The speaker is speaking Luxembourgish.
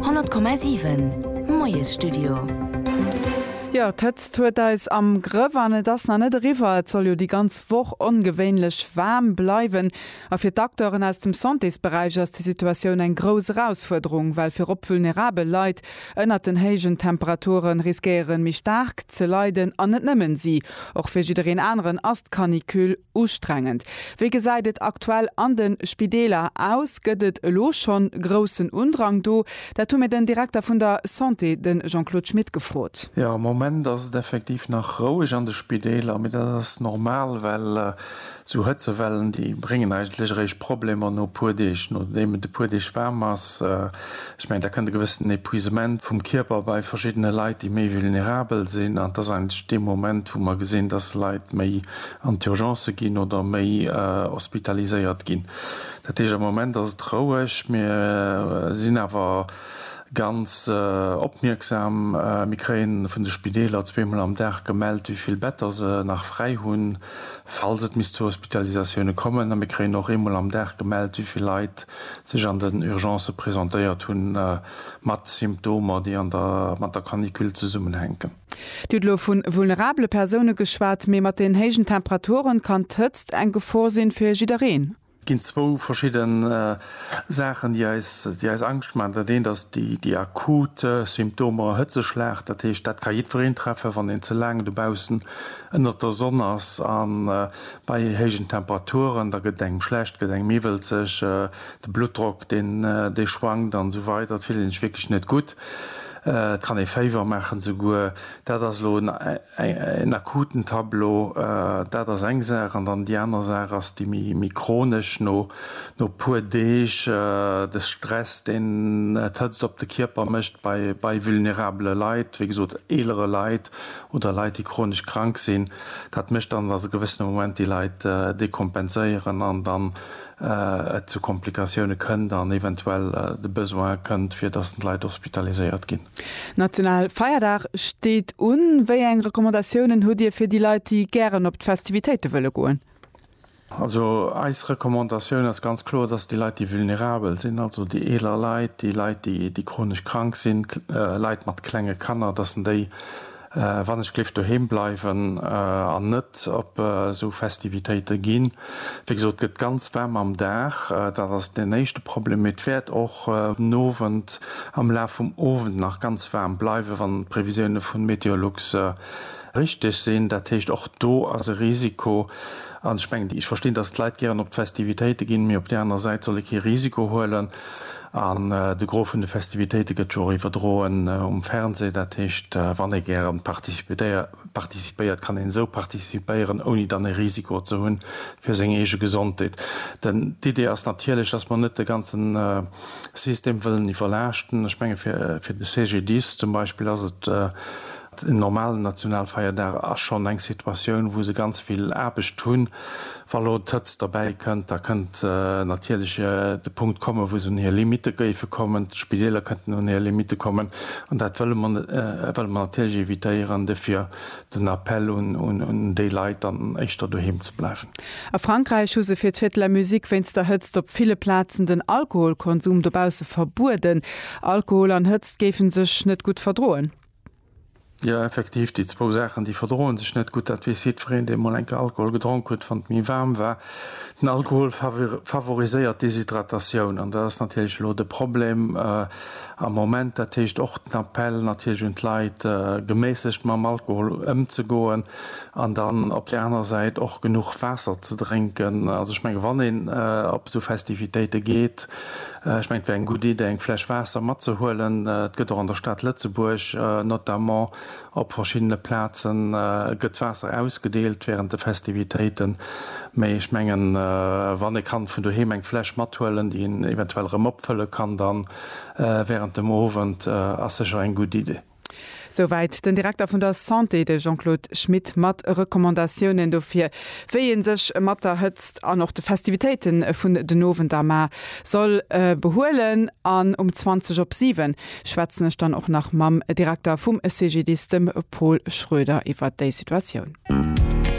100,7 Moiesstudio. Jo, d'Hëtzt huet eis am Grëff an et ass nach net eriwwer. Et soll jo déi ganz Woch ongewéinlech waarm bleiwen. A fir d'Acteuren aus dem Santésberäich ass déi Situatioun eng grouss Erausfuerderung, well virop vulnerabel Leit Ënnert den héijen Temperature riskéieren méi staark ze leiden, an net nëmmen si. Och fir jiddereen aneren ass d'Canicule ustrengend. Wéi gesäit et aktuell an de Spideeler aus? Gëtt et elo schonn groussen Undrang do? Dat hu mir den Direkter vun der Santé, de Jean-Claude Schmit gefrot. Jo, am Moment ass et effektiv nach roueg an de Spideeler, mee dat ass normal, well sou Hëtzewellen, déi bréngen eigentlech eréischt Problemer no e puer Deeg, nodeem et e puer Deeg waarm ass. Ech mengen, da kënnt e gewëssenen Epuisement vum Kierper bei verschiddene Leit, déi méi vulnerabel sinn. An et ass eigentlech dee Moment, wou mer gesinn, dass Leit méi an d'Urgencë ginn oder méi hospitaliséiert ginn. Dat heescht, am Moment ass et roueg. Mir sinn awer ganz opmierksam. Mir kréie vun de Spideeler zweemol am Dag gemellt, wéi vill Better se nach fräi hunn, falls et misst zu Hospitalisatioune kommen. A mir kréien och eemol am Dag gemellt, wéi vill Leit sech an den Urgencë presentéiert hu mat Symptomer, déi an der mat der Canicule zesummenhänken. Dir hutt elo vu vulnerabele Persoune geschwat, mee mat den héijen Temperaturen kann d'Hëtzt eng Gefor si fir jiddereen. Et ginn zwou verschidde Saachen, déi eis, déi eis Angscht maachen. Dat eent ass déi akut Symptomer, Hëtzeschlag, dat heescht, dat ka jiddwereen treffen, wann een ze laang dobaussen ënnert der Sonn ass a Bei héijen Temperaturen, da gëtt engem schlecht, gëtt engem iwwelzeg, de Bluttdrock deen dee schwankt an esou weider, et fillt een sech wierklech net gutt, et kann ee Féiwer maachen esouguer. Dat ass elo en en akuten Tableau, dat ass eng Saach. An dann déi aner Saach ass déi méi méi chronesch, no no e puer Deeg, de Stress deen d'Hëtzt op de Kierper mécht bei bei vulnerabele Leit, wéi gesot eelere Leit, oder Leit déi chronesch krank sinn, dat mécht dann, datt e gewëssene Moment déi Leit dekompenséieren an dann et zu Komplikatioune kënnt an eventuell de Besoin kënnt fir datt d'Leit hospitaliséiert ginn. National Feierdag steet un. Wéi eng Recommandatiounen hutt Dir fir déi Leit déi gären op d'Festivitéite wëlle goen? Also eis Recommandatioun ass ganz kloer, dass déi Leit, déi vulnerabel sinn, also déi eeler Leit, déi Leit, déi chronesch krank sinn, Leit mat klenge Kanner, dass en déi wannechgléift doheem bleiwen an net op esou Festivitéite ginn. Wéi gesot, et gëtt ganz waarm am Dag, dat ass deen éischte Problem, mee et wäert och den Owend, am Laf vum Owend nach ganz waarm bleiwen, wann d'Previsioune vu Meteolux richteg sinn. Dat heescht, och do ass e Risiko. An ech mengen, ech verstinn, datt d'Leit gären op d'Festivitéite ginn, mee op där aner Säit soll ee kee Risiko huelen. An de Gros vun de Festivitéite gëtt jo och iwwerdroen um Fernseh. Dat heescht, wann ee gäre participéiert, kann een esou participéieren, ouni dann e Risiko ze hunn fir seng eege Gesondheet. Denn d'Idee ass natierlech, datt mer net de ganze System wëllen iwwerlaaschten. Ech menge fir de CGDIS zum Beispill ass et En normalen Nationalfeierdag ass schonn eng Situatioun, wou se ganz vill Aarbecht hunn. Wa lo d'Hëtzt derbäi kënnt, da kënnt natierlech de Punkt kommen, wou se un hir Limitte géife kommen. D'Spideeler kënnten un hir Limitte kommen. An dat wëlle mer net, wëlle mer natierlech evitéieren. Dofir den Appell un déi Leit, dann éischter doheem ze bleiwen. A Frankräich hu se fir d'Fête de la musique wéinst der Hëtzt op ville Plazen den Alkoholkonsum dobausse verbueden. Alkohol an Hëtzt géife sech net gutt verdroen. Jo effektiv, déi zwou Saachen déi verdroen sech net gutt, dat weess jiddwereen deen mol eng Kéier Alkohol gedronk huet, wann et méi waarm war. Den Alkohol favoriséiert d'Déshydratatioun an dat ass natierlech elo de Problem am Moment. Dat heescht och den Appell natierlech un d'Leit geméissegt mam Alkohol ëmzegoen an dann op där anerer Säit och genuch Waasser ze drénken. Also ech menge wann een op esou Festivitéite geet Ech mengen, et wär eng gutt Idee, eng Fläsch Waasser matzehuelen. Et gëtt och an der Stad Lëtzebuerg, notamment op verschiddene Plazen, gëtt Waasser ausgedeelt wärend de Festivitéiten. Mee ech mengen, wann ee kann vun doheem eng Fläsch mathuelen, déi een eventuell erëm opfëlle kann dann wärend dem Owend, ass sécher eng gutt Idee. Souwäit den Direkter vun der Santé, de Jean-Claude Schmit, mat Recommandatiounen dofir, wéi ee sech mat der Hëtzt an och de Festivitéite vun den Owender mar soll behuelen. An um 20 op 7 schwätzen ech dann och nach mam Direkter vum CGDIS, dem Paul Schroeder, iwwer déi Situatioun.